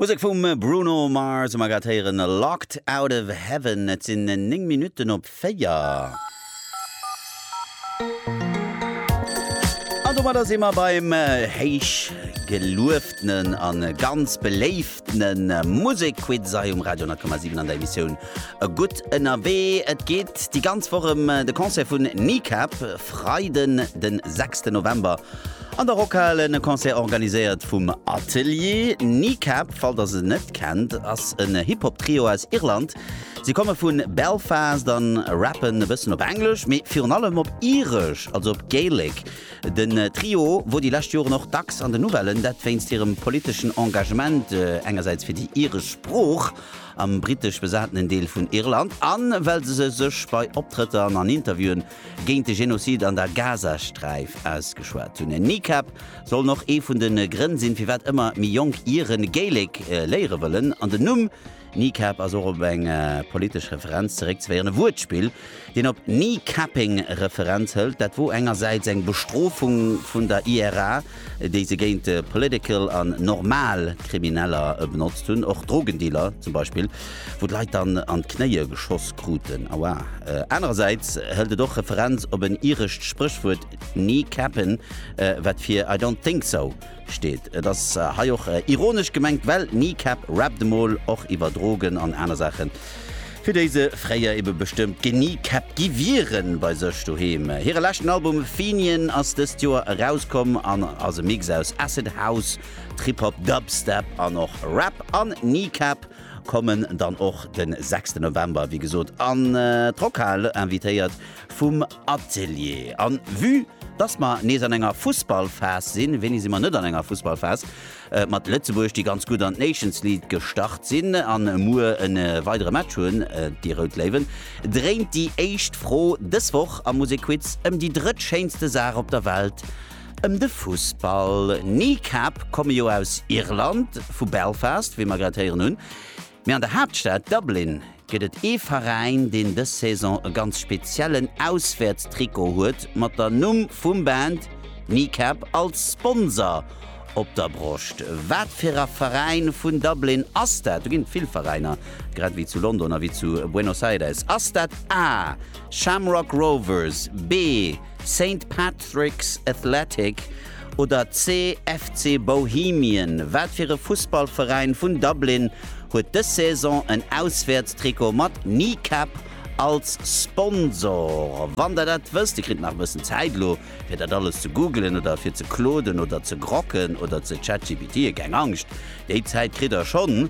Musek vum Bruno Mars, ma grad héieren Locked Out of Heaven. Et sinn 9 Minutten op 4. An domadder si mer beim héich gelueftenen a ganz beléiftene Musekquiz hei um Radio 10,7 an der Emissioun Gutt ënnerwee. Et geet déi ganz Woch ëm de Concert vun Kneecap, Freiden, de 6 November An der Rockhal en e Concert organiséiert vum Atelier. Kneecap, falls der se net kennt, ass en Hip-Hop Trio aus Irland. Si komme vun Belfast an rappen e bëssen op Englesch, mee virun allem op Iresch, also op Gaelic. Den Trio wor déi lescht Joren och dacks an den Nouvellen, dat wéinst hirem politeschen Engagement, engersäits fir déi iresch Sprooch am britesch besatenen Deel vun Irland, an well se sech bei Optrëtter an an Interviewen géint de Genozid an der Gazasträif ausgeschwat hunn. Kneecap sollen och ee vun de Grënn sinn, firwat ëmmer méi jonk Iren Gaeilek léiere wëllen. An den Numm Kneecap ass och op eng politesch Referenz zeréckzeféieren, e Wuertspill, deen op Kneecapping Referenz hëlt, dat wou engersäits eng Bestrofung vun der IRA, déi se géint political an normal Krimineller benotzt hunn, och Drogendealer zum Beispill, wou d'Leit dann an d'Knéie geschoss kruten, aua. Anerersäits hëlt et och Referenz op en irescht Spréchwuert kneecappen, wat fir I don't think so steet. Et ass hei och ironesch gemengt, well kneecap rappt emol och iwwer Drogen an aner Saachen. fir déi se fréier ebe bestëmmt Genikap gi wieren, bei sech doheem. Hire leschten Album Fenian ass dëst Joer erauskomm an ass e Mix aus Acid House, Trip-Hop, Dubstep an och Rap. An Kneecap kommen dann och de sechste November, wéi gesot, an d'Rockhal, invitéiert vum Atelier. An vue dass mer nees an enger Fussballphas sinn, wéini si mer net an enger Fussballphas? mat Lëtzebuerg, déi ganz gutt an d'Nations League gestart sinn an muer e weidere Match hunn, déi Rout Léiwen, dréint déi éischt Fro dës Woch am Musekquiz ëm déi drëttschéinste Saach op der Welt, ëm de Fussball. Kneecap komme jo aus Irland, vu Belfast, wéi mer grad héieren hunn. Mee an der Haaptstad Dublin gëtt et ee Veräin, deen dës Saison e ganz speziellen Auswäertstrikot huet, mat der Numm vum Band Kneecap als Sponsor op der Broscht. Wat fir a Veräin vun Dublin ass dat? Do ginn et vill Veräiner, grad ewéi zu London a wéi zu Buenos Aires. Ass dat A, Shamrock Rovers, B, Saint Patrick's Athletic oder CFC Bohemian, wat fir e Fussballveräin vun Dublin huet dës Saison en Auswäertstrikot mat Kneecap als Sponsor? Wann der dat wësst, dir kritt nach e bëssen Zäit elo fir dat alles ze googelen oder fir ze kloden oder ze grocken oder ze chatgpt'en, keng Angscht, déi Zäit kritt der schonn.